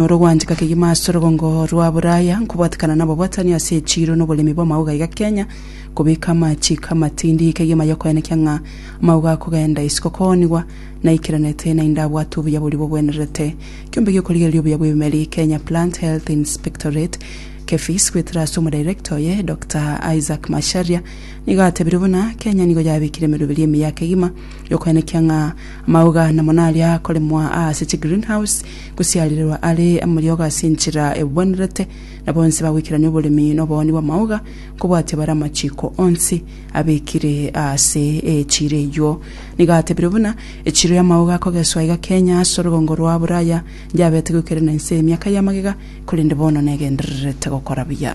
Noro gwanchika kegima ase orogongo rwa Buraya, nkobwatekana nababwatani ase echiiro na oboremi bw'amauga iga Kenya, kobeka amachiiko amatindi kegima yokoenekia ng'a amauga akogenda isiko koonigwa. Naikeranete naende abwate obuya boria bogwenerete kiombe gi'okorigereria obuya bw'ebimeri, Kenya Plant Health Inspectorate, KEPHIS, goetera ase omodirector oye, Doctor Isaac Macharia, nigo atebirie buna Kenya nigo yabekire emeruberio emiya kegima, Gokoenekia ng'a amauga namo naria akoremwa aase chigreenhouse, gosiarirerwa are amariogo ase enchera ebwenerete, na bonsi bagoikerania oboremi na obooni bw'amauga, nkobwatia bare amachiiko onsi abekire aase echiiro eyio. Nigo atebire buna, Echiiro y'amauga akogeswa iga Kenya ase orogongo rwa Buraya, ndiabete goikerana inse emiaka y'amagega, korende bono negendererete gokora buya.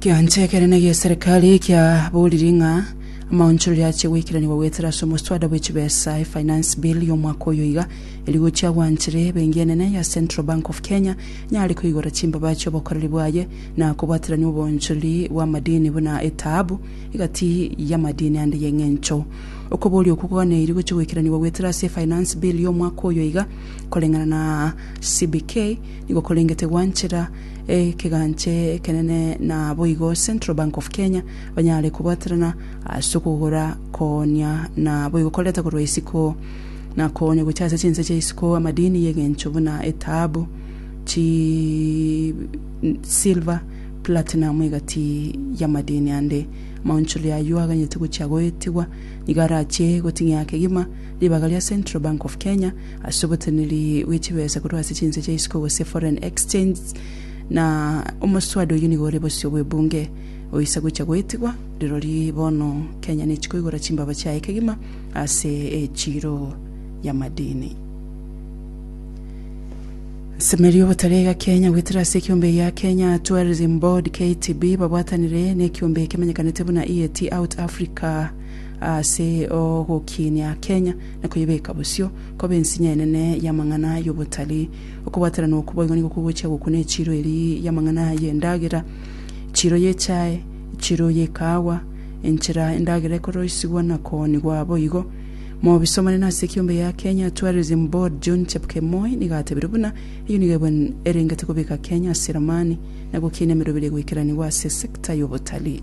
Ekeancha ekere na egi'eserikari kiaboorire ng'a amaonchoreria ache goikeranigwa goetera ase omoswada bwe chibesa, e'Finance Bill, y'omwaka oyo iga, erio gochia gwanchire ebenki enene ya Central Bank of Kenya nyare koigora chimbaba chi'obokoreri bwaye na kobwaterania oboonchoreri bw'amadini buna etaabu egati y'amadini ande y'eng'encho. Okobooria okwo koganaeirie gochia goikeranigwa goetera ase e'Finance Bill, y'omwaka oyo iga, koreng'ana na CBK, Nigo korengete gwanchera ekeganche ekenene naboigo Central Bank of Kenya banyare kobwaterana ase okogora, koonia na boigo koreta korwa isiko na koonia gocha ase chinse chia isiko amadini y'egencho buna etahabu, chi silver, platinum egati y'amadini ande. Amaonchori ayio aganyete gochia goetigwa nigo arachie goting'ia kegima ribaga ria Central Bank of Kenya, ase oboteneri bwe chibesa korwa ase chinse chia isiko gose foreign exchange, na omoswada oyio nigo ore bosio bw'ebunge oisa gocha goetigwa, rirori bono Kenya nechi koigora chimbaba chiaye kegima ase echiro y'amadini. Nsemeri obotarega Kenya goetera ase ekiombe gia Kenya Tourism Board, KTB, babwatanire nekiombe ekemenyekanete buna EAT Out Africa ase ogokinia Kenya na koyebeka bosio, koba ensinye enene y'amang'ana y'obotari. Okobwateranwa okwo boigo nigo kogochia gokuna echiro eri y'amang'ana y'endagera, echiro y'echae, echiro y'ekaawa, enchera endagera ekoroisigwa na kooni gwa boigo. Mobisomane na ase ekiombe ya Kenya Tourism Board John Chepkemoi nigo atebire buna eyio nigo ebe erengete kobeka Kenya ase eramani na gokiina emerobera egoikeranigwa ase sector y'obotari.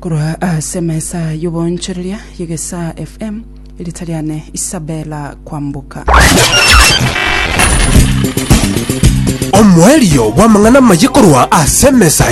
Korwa ase emesa y'oboonchoreria y'egesaa FM, erita riane Isabella Kwamboka. Omoerio bw'amang'ana amaye korwa ase emesa